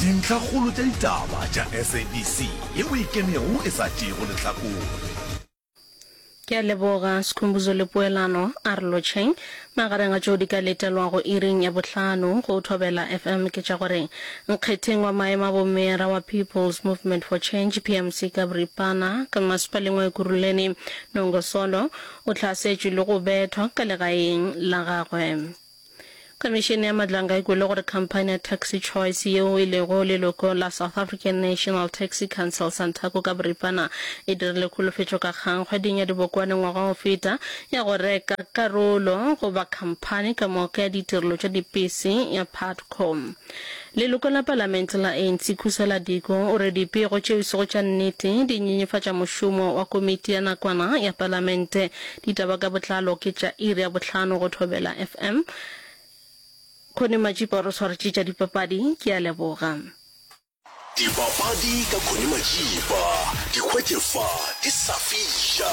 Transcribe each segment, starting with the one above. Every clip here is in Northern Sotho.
Dintlhakgolo tša ditaba tša SABC ye o e kenego e sa tšeego lehlakore. Ke a leboga Skhumbuzo le poelano. A re lotšheng. Magareng a tšeo di ka letelwago iring ya bohlano go Thobela FM ke tša gore nkgetheng wa maemo a bomeyara wa People's Movement for Change, PMC, ka boripana ka masepaleng wa Ekurhuleni, Nongo Solo, o hlasetšwe le go bethwa ka legaeng la gagwe. Khomišene ya Madlang ga e kwele gore khamphani ya Taxi Choice yeo e lego leloko la South African National Taxi Council, Santaco ka boripana, e dirile kholofetšo ka kgang kgweding ya dibokwane ngwaga o feta ya go reka karolo goba khamphani ka moka ya ditirelo tša dipese ya Putco. Leloko la palamente la ANC Khusela Diko o re dipego tšeo e sego tša nnete di nyenyefatša mošomo wa komiti ya nakwana ya palamente Ditaba ka botlalo ke tša iri ya bohlano go Thobela FM. Connie Majipa o re swaretse tša dipapadi. Ke a leboga. Dipapadi ka Connie Majipa. Di hwetše fa di sa fiša.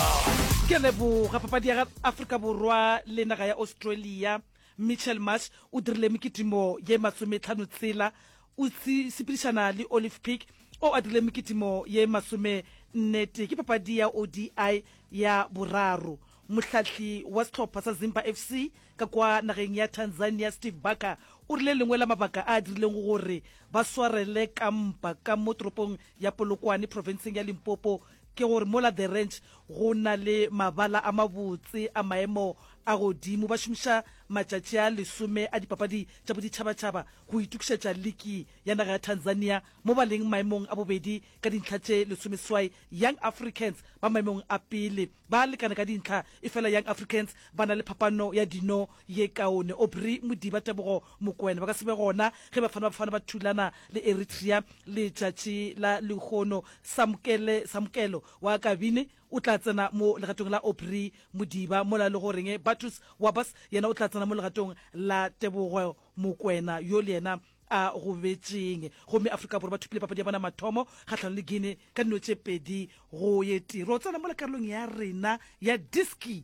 Ke a leboga. Papadi ya Afrika Borwa le naga ya Australia, Mitchel Marsh o dirile mekitimo ye masometlhano tsela O sepedišana le Olive Peak o a dirile mekitimo ye masomennetee. Ke papadi ya ODI ya boraro mohlahli wa sehlopha sa Zimba FC ka kwa nageng ya Tanzania Steve Barker o rile lengwe la mabaka a dirileng gore ba swarele ka mpa ka mo toropong ya Polokwane profenseng ya Limpopo Ke gore mola The Ranch go na le mabala a mabotse a maemo a godimo. Ba šomiša matšatši a lesome a dipapadi tša boditšhabatšhaba go itokišetša liki ya naga ya Tanzania mo ba leng maemong a bobedi ka dintlha tše lesomeswai. Young Africans ba maemong a pele ba lekana ka dintlha efela Young Africans ba na le phapano ya dino ye kaone. Aubrey Modiba, Tebogo Mokoena ba ka se be gona ge Bafana Bafana ba thulana le Eritrea letšatši la lehono. Samkele Samkelo wa Kabini o tla tsena mo legatong la Aubrey Modiba mola e lego goreng Battus Wabas yena o tla tsena mo legatong la Tebogo Mokoena yo le yena a gobetšeng. Gomme Afrika Borwa ba thopile papadi ya bona ya mathomo kgahlanong le Guinea ka dino tše pedi go ye tee. Ro tsena mola karolong ya rena ya Diski.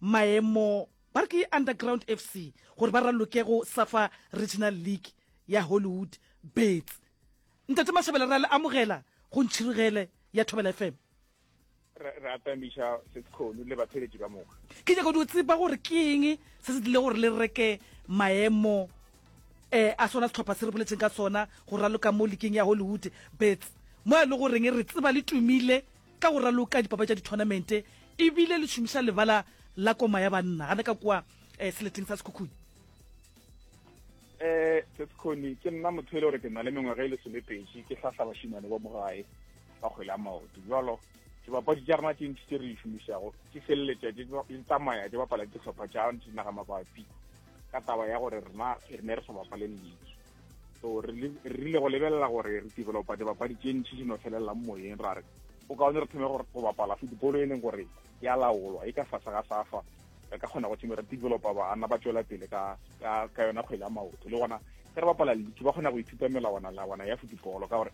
maemo ba re ke Underground FC gore ba raloke go Safa Regional League ya Hollywood Bets. Ntate Mashabela ra le amogela go Ntšhirogele ya Thobela FM. re atamiša sekgono le batheletši ka moka ke nyaka di o tseba gore ke eng se se dile gore le reke maemo um a sona setlhopha se re boletseng ka sona go raloka mo lekeng ya hollywood bets mo e le goreng re tseba le tumile ka go raloka dipapa tša dithonamente ebile le šomiša lebala la koma ya banna gane ka kwa um seleteng sa sekhukhuni um sesekgoni ke nna motho e le gore ke na le mengwaga e le solepedi ke tlhahla bašimane ba mogae ba kgwele a maoto jalo dibapadi tša rena tše ntši tse re di šomišago di feleletša di tsamaya di bapala ditlhopha tša dinaga mabapi ka taba ya gore rena re ne re sa bapale league so re rile go lebelela gore re developa dibapadi tše ntšhi di no felelelang moyeng ra re o kaone re thome go bapala football e leng gore ya laolwa e ka fase ga safa re ka kgona go thome re developa baana ba tswela pele ka yona kgwele ya maoto le gona ge re bapala league ba kgona go ithuta melawana lawana ya football ka gore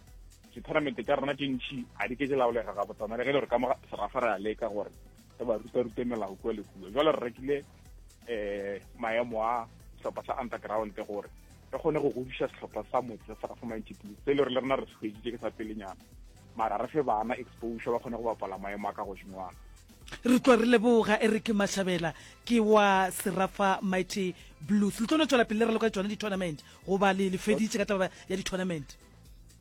ditournamente tša rona tše ntšhi ga di ke di laolega ga botsana le ge le gore ka mo serafa re a leka gore re ba rutarute melao kua le kua jalo re rekile eh maemo a sehlopha sa underground gore re kgone go godiša sehlopha sa motse sa sa mighty blue se le re le rena re se ke sa pelenyana mara re fe bana exposure ba kgone go bapala maemo a ka godimoana re tlwa re leboga e re ke mashabela ke wa serafa mighty blues le tlo no tswela pele re loka tsone di-tournament goba le le feditse ka taba ya di-tournament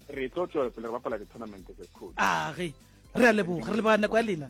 re tlo tswela pele re bapala di-tournament tse cool age re a leboga re leboga nako ya lena